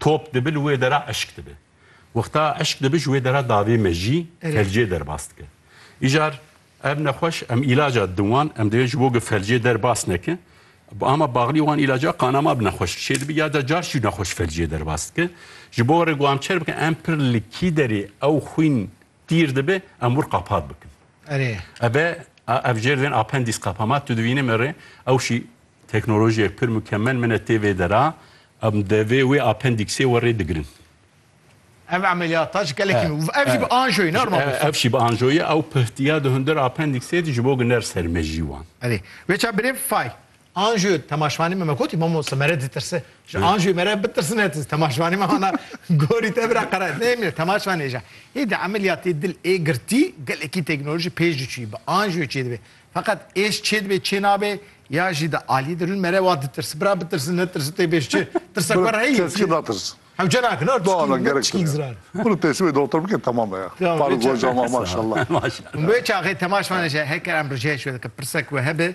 Top dibi li wê dera eşk dibi. Wexta eşk dibi ji wê dera davê mejî felcê derbas dike. Îcar ev nexweş em îlaca din wan em divê ji bo ku felcê derbas neke ama baxlî wan îlaca qanama bi nexweş dişê dibi ya da car jî nexweş felcê derbas dike. Ji bo rê ku em çêr bikin em pir li kî derê ew xwîn Tîr dibe em wir qapat bikin. Erê. Ebe ev jêr vên apendîs qepama tu divînî min rê ew şî teknolojiyek pir mukemel min e tê vê dera em de vê wê apendîksê we rê digirin. Ev emeliyata ji gelekî min û ev jî bi anjoyî ne arma bû. Ev jî bi anjoyî ew pihtiya di hundir apendîksê de ji bo ginder ser mejî wan. Erê. Wê çav birêv fay. Anjû temaşvanî me me gotî mamo se mere ditirse ji anjû mere bitirsine tu temaşvanî me hana gorî te bira qere nê me temaşvanê ja hê di emeliyatê dil ê girtî gelekî teknolojî pêş diçûyî bi anjû çê dibe feqet êş çê dibe çê nabe ya jî di aliyê de rûn mere wa ditirse bira bitirse netirse tê bêj çi tirsak were heyî keski natirse hewce nakin ot Doğan çikî gerek çikî zira bunu teslim doktor bike tamam be ya Tamam, Faruk peki. hocama maşallah Wê çaxê temaşvanê je heker em rijeyê şûye dike pirsek we hebe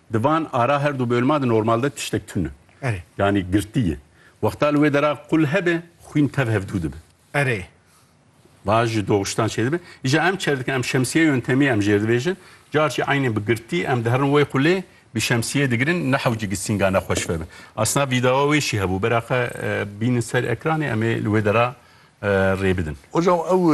Di van ara her du bölma de normalde tiştek tun e. Erê. Yanî girtî ye. Wexta li wê dera qul hebe, xwîn tev hevdû dibe. Erê. Baş ji doxuştan çêdibe. Îja em çer dikin, em şemsiye yöntemî em jêr dibêjin. Car jî eynî bi girtî em diherin wê qulê, bi şemsiyê digirin ne hewcikî sînga ne xweş vebe. Asna vîdeoa wê jî hebû. Beraxe bînin ser ekranê em ê li wê dera rê bidin. Hocam ew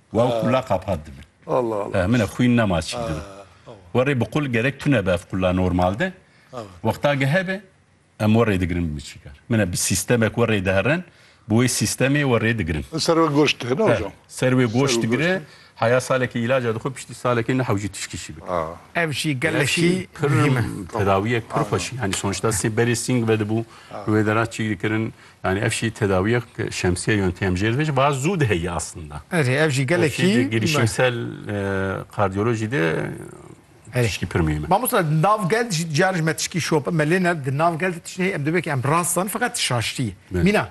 Wa û qula qapat dibin. Min e xwîn nema çî dibe. Werê bi qul gerek tune be ev qula normal de. Wexta ge hebe em werê digirin bi miçîkar. Min e bi sîstemek werê diherin, bi wê sîstemê werê digirin. Ser wê goşt digire hocam. Ser wê goşt digire, heya salekê îlaca dixwe piştî salekê niha jî tişkî jî bike. Ev jî gelek jî muhîm e. Tedawiyek pir xweş e. Yanî sonuçta sê berê sîng vedibû, li wê de re çî dikirin. Yanî ev jî tedawiyek şemsiye yon têm jêr ve jî va zû diheyî aslında. Erê ev jî gelekî Ev jî girişimsel kardiyolojî de tişkî pir mihîm e. Mamosta di nav gel de jî caran jî me tişkî şop me lê ne di nav gel de tiştî heye em dibê ke em rast zan feqet şaştî ye. Mîna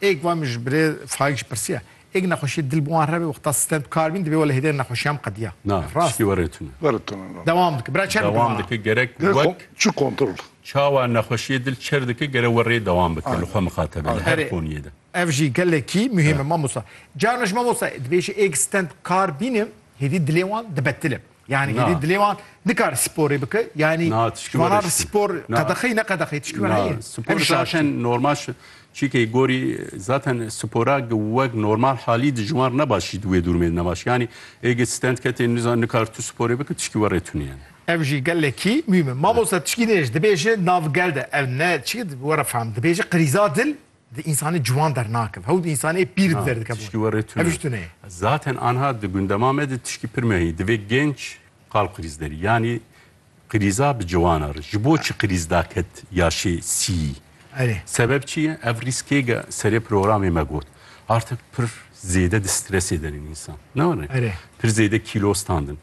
êk va min ji birê Faik jî pirsiya Êk nexweşiyê dil bi wan re be wexta sitend bi kar bîn, divê we li hêdene nexweşiyan biqediya. Na, tiştî were tune. Were tune na. Dewam dike. Bira çend Dewam dike gerek Gerek wek kon çi kontrol. çawa nexweşiyê dil çer dike gere we rê dewam bike li xwe Aynen. mixatebe li Aynen. her Erê, qoniyê de. ev jî gelekî muhîm e mamosta. Carna ji mamosta dibêje êk sitend bi kar bîne hêdî dilê wan dibetilib. Yani Na. gelî dilê wan nikare sporê bike. Yani Na, tişkî ji manan were şikî. spor Na. qedexeyî ne qedexeyî tişkî were Na, heye. spor Ev şaştî. zaten normal şi- çîkê gorî zaten spora gi wek normal halî di ji wan re ne baş jî di wê dûrmê de ne baş. Yanî êgê stand ketê nizan nikar tu sporê bike tişkî were tunî yani. Ev jî gelekî muhîm e. Mamosta tişkî nêj dibêje nav gel de ev ne çi were fehm dibêje qirîza dil Di însanê ciwan dernakeve û di însanê pîr di der dike bon. Tişkî we rê tune. Ev ji tune ye. Zaten anha di gundema me de tişkî pir mehî. Divê genç qal qirîz derî. Yanî qirîza bi ciwana re. Ji bo çi qirîz da ket yaşê sîyî? Erê. Sebeb çi ye? Ev rîskê ge serê programê me got. Artik pir zêde di stresê de in însan. Ne were? Erê. Pir zêde kîlo standin.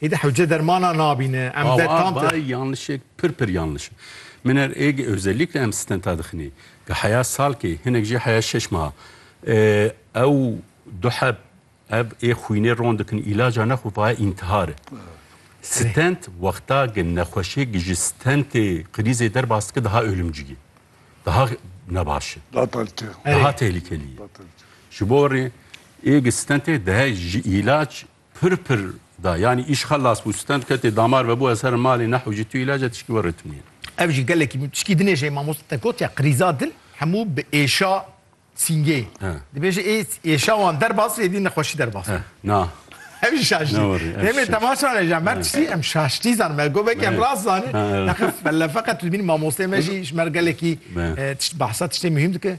Hêdî hewce dermana nabîne. Em zed tam te. Bay yanlışêk pir pir yanlış. Min er ê özellikle em stenta dixinê. Ga heya salkê, hinek jî heya şeş meha. Ew du heb ev ê xwînê ron dikin îlaca ne xwe vaye intihar e. Stent wexta ge nexweşêk ge ji stentê krîzê derbas dike daha ölümcî ye. Daha nebaş e. Daha tehlikelî ye. Ji bo rê ê ge stentê dihe ji îlac Pir pir da yanî îş xelas bû, stend ketê damar vebû ez herim malê neho jî tu îlac e tişkî we rêtimiye. Ev jî gelekî min tişkî dinêje mamoste te gotiya qirîza dil hemû bi êşa sîngê dibêje ê êşa wan derbas bê êdî nexweşî derbas bê. Na. Ev jî şaştî. Demê temaşan e jî em her tiştî em şaştî zanim me got belkî em rast zanîn. Nexe belle feqet dibînim mamosteyê me jî ji me re gelekî tişt behsa tiştê muhîm dike.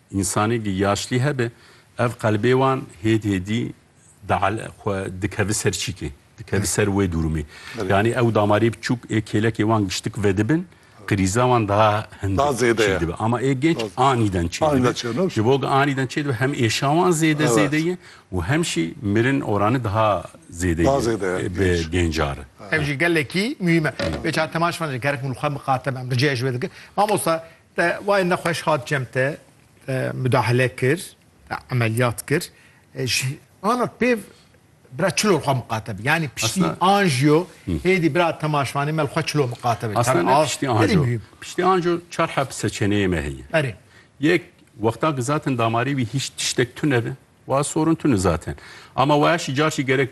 Însanêkî yaşlî hebe ev qelbê wan hêd hêdî dial xwe dikevi ser çîkê, dikevi ser wê durumê. Yanî ew damarê biçûk ê kêlekê wan giştik vedibin, qirîza wan daha hind çê dibe. Ama ê genç anîden çê dibe. Ji bo ku anîden çê dibe hem êşa wan zêde zêde ye û hem jî mirin oranî daha zêde ye bi genca re. Ev jî gelekî muhîm e. Bêçare Temaş van ji gerek min li xwe miqate me em riceyê ji wê dikim. Mamosta Te wayê nexweş hat cem te mudahale kir, te emeliyat kir. E, ji anak pêv bira çilo xwe miqate bi. Yani piştî anjiyo hêdî bira temaşvanê me xwe çilo miqate bi. Aslında ne piştî anjiyo. Piştî anjiyo çar hep seçeneği me heye. Erê. Yek wexta ki zaten damarê wî hiç tiştek tune bi. Wa sorun tune zaten. Ama waya şi carşi gerek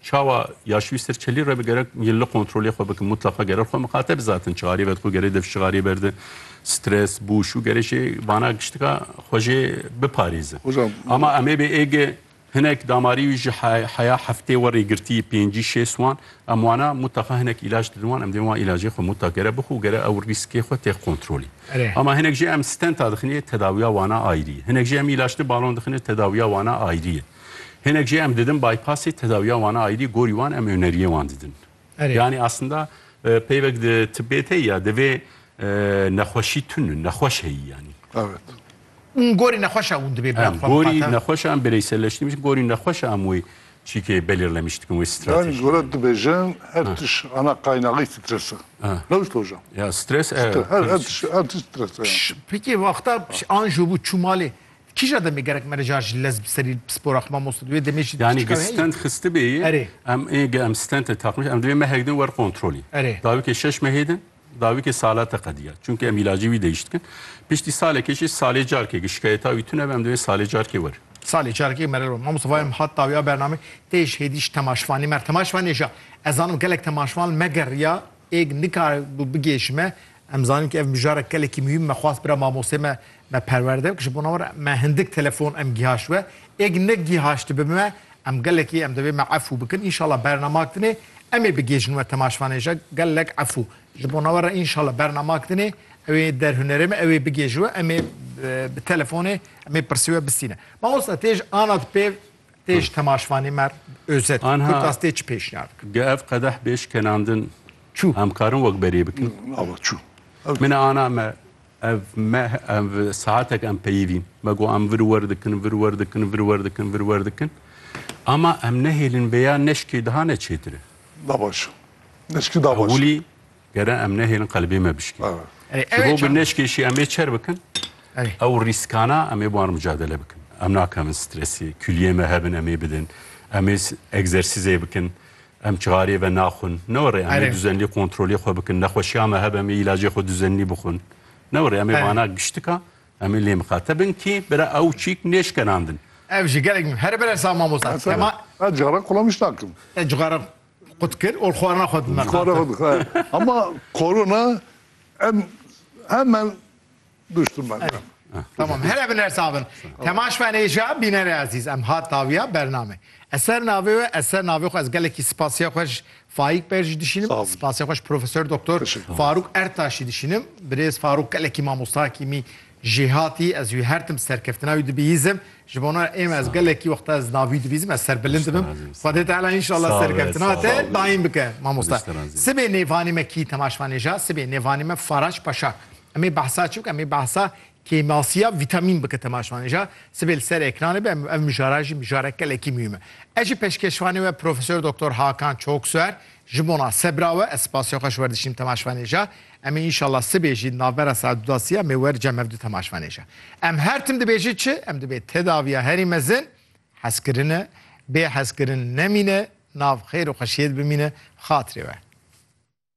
Çawa ya şwîstir çelî re bi gerek yên li kontrolê xwe bikin mutleqa gerer xwe miqate bizatin çixarî vedixwe gerê dev çixarî berde stres bû şû gerê jê vana giştika xwe jê biparêzin. Ama em ê bê êge hinek damarî wî ji heya heftê werê girtî pêncî şêst wan em wana mutleqa hinek îlaj didin wan em dê wan îlajê xwe mutlaq gere bixwe û gere ew rîskê xwe têx kontrolî. Ama hinek jê em stenta dixinê tedawiya wana ayrî ye. Hinek jê em îlaj ti balon dixinê tedawiya wana ayrî ye. Hinek jî em didin bypassê tedawiya wan a ayrî gorî wan em oneriyê wan didin. Erê. Yani aslında e, peyvek di tibbê tê ya divê e, nexweşî tun in, nexweş heyî yanî. Evet. Un gorî nexweşa un dibê bila Em xwe gorî biqate. nexweşa em bireyselleştîmişin, gorî nexweşa em wê çîkê belirlemiştikin wê Yani strateji. Gorat dibêjin her tiş ana kaynağı strese. Ha. Rewş loja. Ya stres e. Her, her, tiş, her tiş strese yani. Pişt, Peki vakta pişt, anjo bu çumalê Kîja demê gerek me rica ji lez bi serî spora xwe mamos di wê demê jî Yani piçika heye. stent xistibê yê. Erê. Em ê ge em stente taqmiş em divê mehek din wer kontrolî. Erê. Dawikê şeş mehê din dawikê salate qediya. Çunke em îlacê wî deyiş dikin. Piştî salekê jî salê carkê ge şikayeta wî tune be em divê salê carkê wer. Salê carekê mere ro. Mamos vayem hat dawiya bername tê ji hêdî ji temaşvanê mer. Temaşvanê ja ez zanim gelek temaşvan megeriya êg nikare bû bigê ji me Em zanîn ku ev mijarek gelekî muhîm me xwest bira mamosteyê me me perwerde bike ji bo navera me hindik telefon em gîhaşt we êk ne gîhaştibe me em gelekî em divê me efû bikin înşala bernama tinê em ê bigêjin we temaşvanê je gelek efû ji bo navera înşala bernama tinê ew ê der hunerê me ew ê bigêji we em ê bi telefonê em ê pirsî we bistîne mamosta tê ji anat pê Tê ji temaşvanê mer özet Anha, kurt astê çi pêşniyar bikin? Ge ev qedeh bê şkenandin çû em karin wek berê bikin? Ava çû. Min e ana me ev me ev saatek em peyivîn. Me got em vir wer dikin, vir wer dikin, vir wer dikin, vir wer dikin. Ama em nehêlin vêya neşkê daha ne çêtir e. Da baş. Neşkî da baş. Ewilî Gere em nehêlin qelibê me bişkî. Ji bo ku neşkêşî em ê çer bikin, ew rîskana em ê bi wan re micadele bikin. Em nakevin stresê, kuliyê me hebin em ê bidin, em ê egzersîzê bikin, em çixarê ve naxwin. Ne were em ê duzenlî kontrolê xwe bikin, nexweşiya me hebe em ê îlacê xwe duzenlî bixwin. Ne were em ê vana giştika em ê lê miqate bin kî bira ew çîk nêşkenandin. Ev jî gelek me. Here bere sağ mamosta. Te ma. Ez cixara kulawiş nakim. Te cixara. Xwe dikir û xwarina xwe dime. Xwarina xwe dixwe. Hema korona em hemen duştu me. Tamam here bin her sabin. Temaş ben êja bînerê ezîz em hat dawiya bername. Eser navê we eser navê xwe ez gelekî spasiya xwe ji Faik Bey jî dişînim. Spasiya xwe ji Profesör Doktor Faruk Ertaşî dişînim. Birêz Faruk gelekî mamosta kîmî Jêhatî ez wî her tim serkeftina wî dibihîzim. Ji bona ême ez gelekî wexta ez navî dibîzim ez serbilind dibim. Xwedê Teala înşallah serkeftina te daîm bike mamosta. Sibê nêvanê me kî temaşvanê ja sibê nêvanê me Faraç Paşa. Em ê behsa çi bike em ê behsa kêmasiya vîtamîn bike temaşvanê ja sibê li ser ekranê be em ev mijara jî mijarek gelekî mihîm e. Ez jî peşkeşvanê we Profesor Doktor Hakan Çoksuer ji bona sebra we ez spasê xwe ji we dişînim temaşvanê ja. Em ê înşallah sibê jî di navbera saet du da sî em ê wericem hev du temaşvanê ji em her tim dibêjin çi em dibê tedaviya herî mezin hezkirin e, bê hezkirin nemîne, nav xêr û xweşiyê de bimîne bi xatirê we.